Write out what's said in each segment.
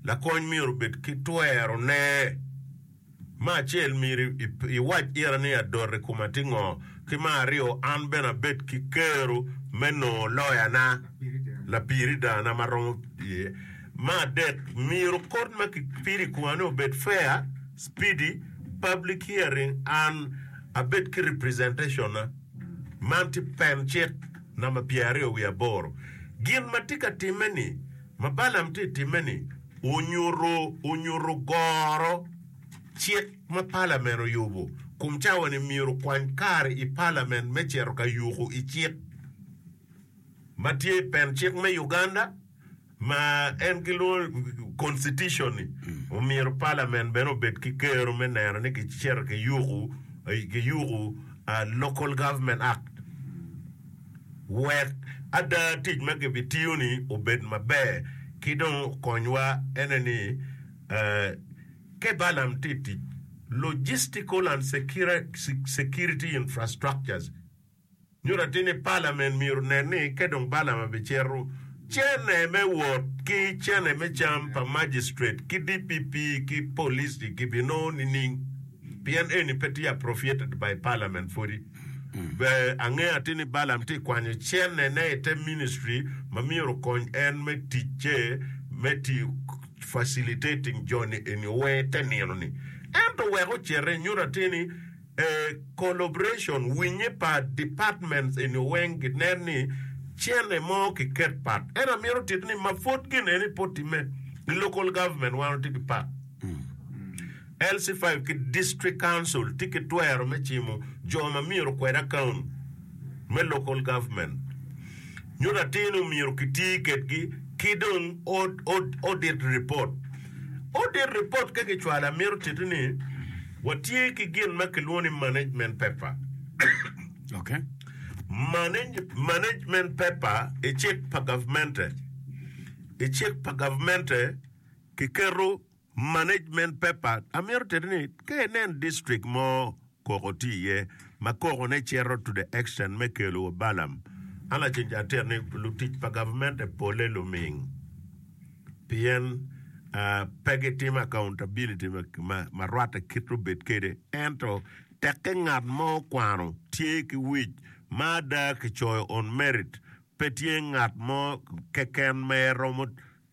Lakony myero obed ki twerone. Me acel, myero iwac ira ni adot i koma tye ngo, ki me aryo, an bene abed ki kero me nongo loyana, lapiridaana ma romo iye. Me adek, myero kort ma kipido i komani obed fair, speedy, public hearing and abed ki representation na. Man tye pen cik namba pyeraryo wiye aboro. Gin ma tye ka timme ni. Ma Balaam tye ka timme-ni onyuto onyuto goro cik ma palamen oyubo kun cawa ni myero okwany kare i palamen me cito ka yuko i cik ma tye i pen cik me Uganda ma en gilwongo Constitution-ni. Omyero palamen bene obed ki kero me neno ni kicito kiyuko kiyuko ah, Local Government Act. Wek ada tic ma kibitiyo-ni obed maber ki dong okonywa ene ni, Ke Balaam tye tic, Logistical and Security Infrastructures, nyuto atir ni Parliament myero onen ni ke dong Balaam abicito, cene me wot ki cene me cam pa Magistrate ki DPP ki Police-ci gibinongo nining? Pien eni pe tye approfiated by Parliament pwodi. Ber ange atir ni Balaam tye ka kwanyo cennene i te ministry ma myero okony en me ticce me tiyo facilitating joni eni owe te nino-ni. Ento wek ocete, nyuto atir ni a collaboration, winye pa departments eni weng ginen ni cene mo kiket pat. Ento amyero otit ni ma pud gin eni pud timme, i local government wan watye ki pak. LC five ki District Council tye ki twero me cimo jo ma myero okwed akaun me Local Government nyo latin omyero ki ti kedgi ki dong Audit Report. Audit Report ka ki cwalo a mito titi ni wa tye ki gin ma ki lwongo ni Management Paper. Okay. Management Paper i cik pa Gavmente, i cik pa Gavmente ki keto Management paper, amito teni ni ka inen district mo koko tye iye ma koko ne cito to the extent me kelo wa balam, an lacen ca atito ni lutic pa gavmente pole luming pien pe gitimo accountability ma rwatte kit obed kede ento teke ngat mo okwano tye ki wic ma ada kicoyo on merit pe tye ngat mo keken ma eromo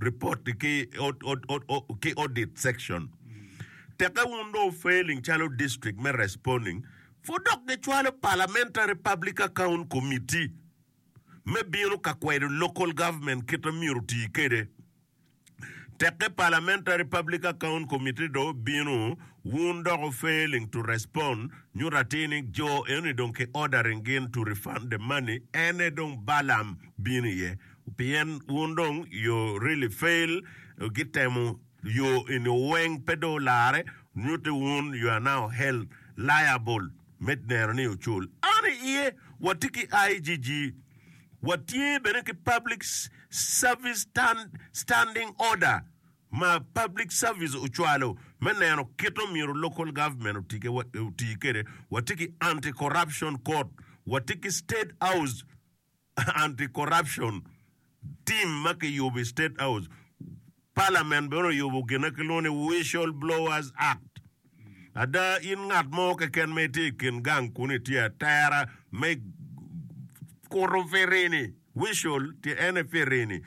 Report ni ki ki audit section teke wun dong failing calo district me responding for dok gi cwalo parliamentary public account committee me bino ka kwedo local government kit ma myero oti kede teke parliamentary public account committee dong bino wun dok failing to respond nyuto atir ni jo eno ni dong ki ordering gin to refund the money ene dong balam bino iye Pien wun dong you really fail ki temo yo eni weng pe dong olare nyuti wun you are now held liable me neno ni ocul an i iye wa tye ki IGG wa tye bene ki public service standing order ma public service ocwalo me neno kito myero local government oti kede wa tye ki anti corruption court wa tye ki state house anti corruption team ma kiyubo i state house, parliament bene oyubo gin ma kilwongo ni whistle blowers act. Ada in ngat mo keken ma itye i kin gang kunu itye atera me kuto firini, whistle tye ene firini,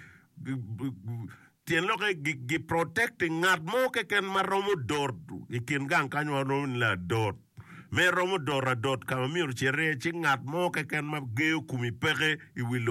Tyen lok aye gi protecting ngat mo keken ma romo dot i kin gang kany ma romo ni ladot me romo dot adot ka ma myero cit iye ci ngat mo keken ma geyo kumi peke i wi lobo.